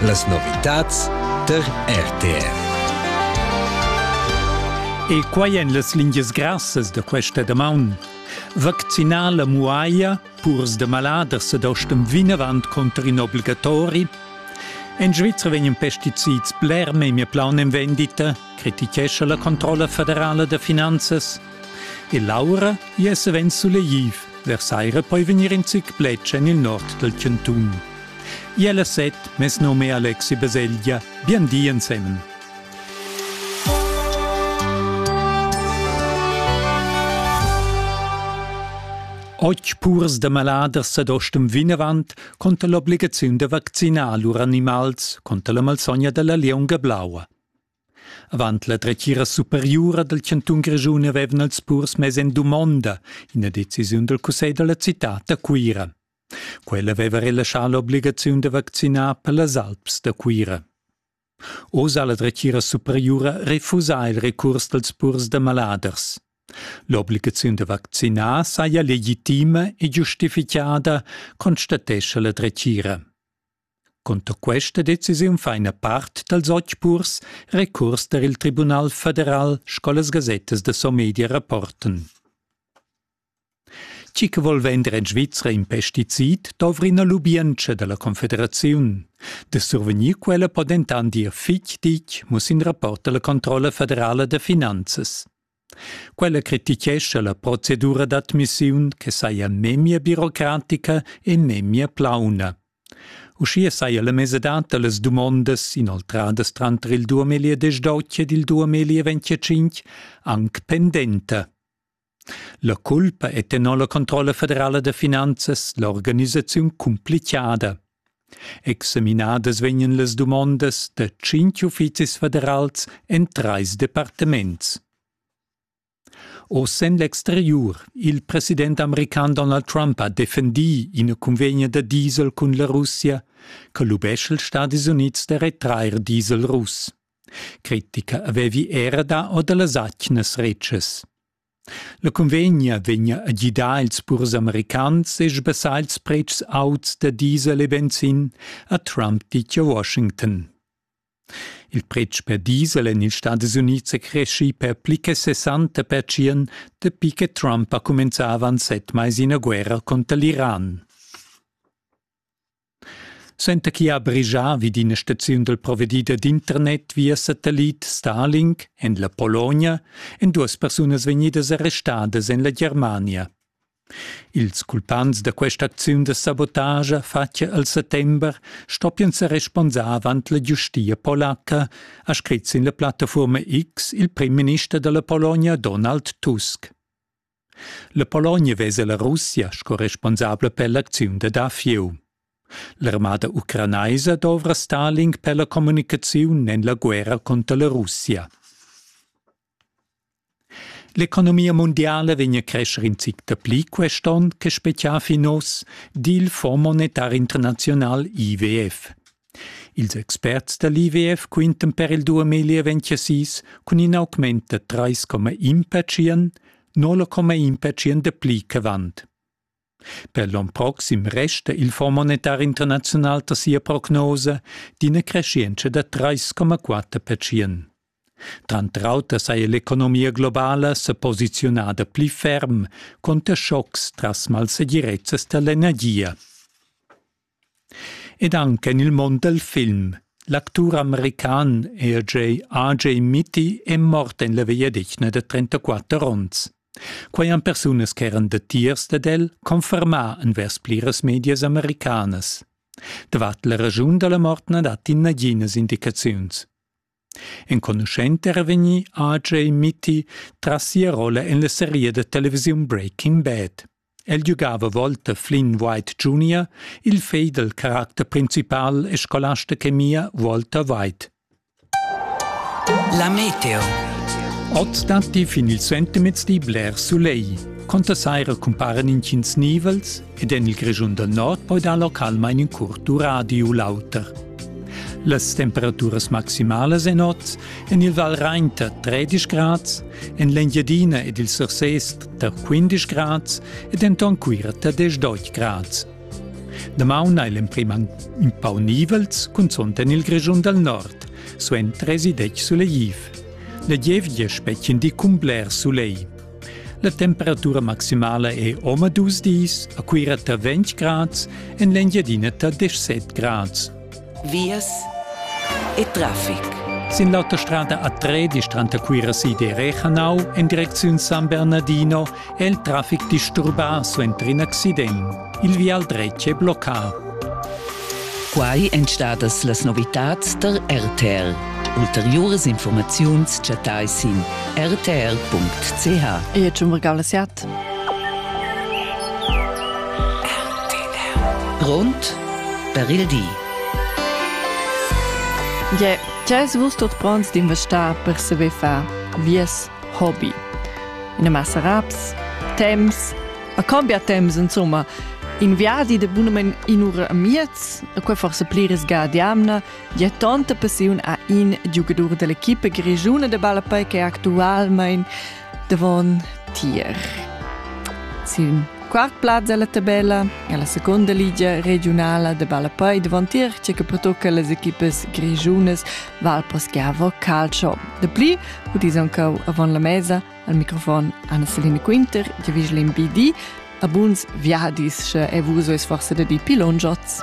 Las novitads tar RTR. E quai èn las lingias grassas da questa damaun. Vaccinar la muaglia, purs da maladers ed ostem vinavant cunter in obligatori. En Svizra vegnan pesticids bler memia plaun en vendita, crititgescha la Controlla federala da finanzas. E l'aura ia savens sulegliv, vers saira poi vegnir in zic plets en il nord dal chantun. Ia la set mes nome Alexi Baselgia, bien di ensemen. Oggi purs da maladers ad ostum vinavant conta l'obligaziun da vaccinar lur animals conta la malsogna dalla lieunga blaua. Avant la dretgira superiura dal chantun Grischun avevan els purs mess en dumonda ina decisiun dal cussegl da la citad da Cuira. Quella aveva relaschà l'obligaziun da vaccinar per las alps da Cuira. Oz ha la dretgira superiura refusà il recurs dals purs da maladers. L'obligaziun da vaccinar saja legitima e giustifichada, constatescha la dretgira. Cunter questa decisiun fa ina part dals otg purs recurs tar il Tribunal federal sco las gasettas da Somedia rapportan. Chi che vol vender en Svizra in pesticid dovri ina lubientscha da la Confederaziun. Da survegnir quella po dentant dir fitg ditg, muss in rapport da la Controlla federala da finanzas. Quella critichescha la procedura d'admissiun che saja memia birocratica e memia plauna. Uschia saja la mesadad da las dumondas inoltradas tranter il duemiliedesch deutsche ed il duemilieventetschinch anc pendenta. La culpa è tenor la Controlla federala da finanzas l'organisaziun cumplichada. Examinadas vegnan las dumondas da tschintg uffizis federals en trais departaments. Oz en l'exteriur. Il president american Donald Trump ha defendì ina cunvegna da diesel cun la Russia che lubescha ils Stadis Unids da retrair diesel russ. Critica avevi era dà or da las atgnas retschas. La cunvegna vegna a gidar ils purs americans e sbassar ils pretschs auts da diesel e benzin, ha Trump ditg a Washington. Il pretsch per diesel en ils Stadis Unids è creschì per pli che 60 percient dapi che Trump ha cumenzà avant set mais ina guerra cunter l'Iran. Suenter chi ha brigià vi d'ina staziun dal provedider d'internet via satellit Starlink en la Pologna èn duas persunas vegnidas arrestadas en la Germania. Ils culpants da questa acziun da sabotagia fatga al settember stoppian sa responsar avant la giustia polacca, ha scrit sin la plattafuorma X il prim minister da la Pologna Donald Tusk. La Pologna vesa la Russia sco responsabla per l'acziun da dafieu. L'armada ucranaisa dovra Stalin per la communicaziun en la guerra cunter la Russia. L'economia mundiala vegn a crescer in zic dapli quest'onn che spezià fin oz, di il Fonds monetar internazional IWF. Ils experts da l'IWF quintan per il 2026 cun in augment da 3,1 pertschient, 0,1 pertschient dapli ch'avant. Per l'onn proxim resta il Fonds monetar internaziunal da sia prognosa d'ina crescienza da 3,4 pertschient. Tranter auter saja l'economia globala sa posiziunada pli ferm conter schocks tras malsegirezzas da l'energia. Ed anche nel mond del film. L'actur american RJ AJ Mitty è mort en la vegliadetgna da 34 onns. Quai han persunas che eran datiers dad el confermà envers pliras medias americanas. Davart la raschun da la mort na datti naginas indicaziuns. Enconuschent era vegnì RJ Mitty tras sia rolla en la seria da televisiun Breaking Bad. El giugava volta Flynn White Jr., il fegl dal caracter principal e scolast da chemia Walter White. La meteo. Oz datti fin il sentimez di bler sulegl. Conta saira cumparen intgins nivels ed en il Grischun dal Nord poi dar localmain in curt duradi u l'auter. Las temperaturas maximalas en oz en il Val Rain tar 13 grads, en l'Engiadina ed il Surses tar 15 grads ed enton Cuira tar 18 grads. Damaun ha l'emprim in pau nivels, cunzont en il Grischun dal Nord, suent 30 suleghiv. La gievgia spetgin di cun bler sulegl. La temperatura maximala è omadus dis a Cuira tra 20 grads en l'Engiadina tra 17 grads. Vias e traffic. Sin l'autostrada A13 tranter Cuira sid e Rechanau en direcziun San Bernardino è il traffic disturbà suenter in accident. Il vial dretg è bloccà. Quai èn stadas las novitads tar RTR. Ulteriuras informaziuns chattai sin rtr.ch. Io ci regala siat. Grond per il di. Je, Tgès vus tot pronts d'investar per saber far vies hobby? In massa raps, temps, A cambia temps insomma in viadi de bunamen in ura a miez, a quei forse pli risga diamna, ja tanta passiun a in giugadur dell'equipe grigiuna de ballapei che actualmein davon tier. Sin quart plaz della tabella è la seconda ligia regionala de ballapei davon tier, c'è che patocca les equipes grigiunas Valposchiavo Calcio. De pli, udis ancau avant la mesa, Al microfon Anna-Celine Quinter, di vigel in BD, a buns viadis, sche è vus forse da di pilongiots.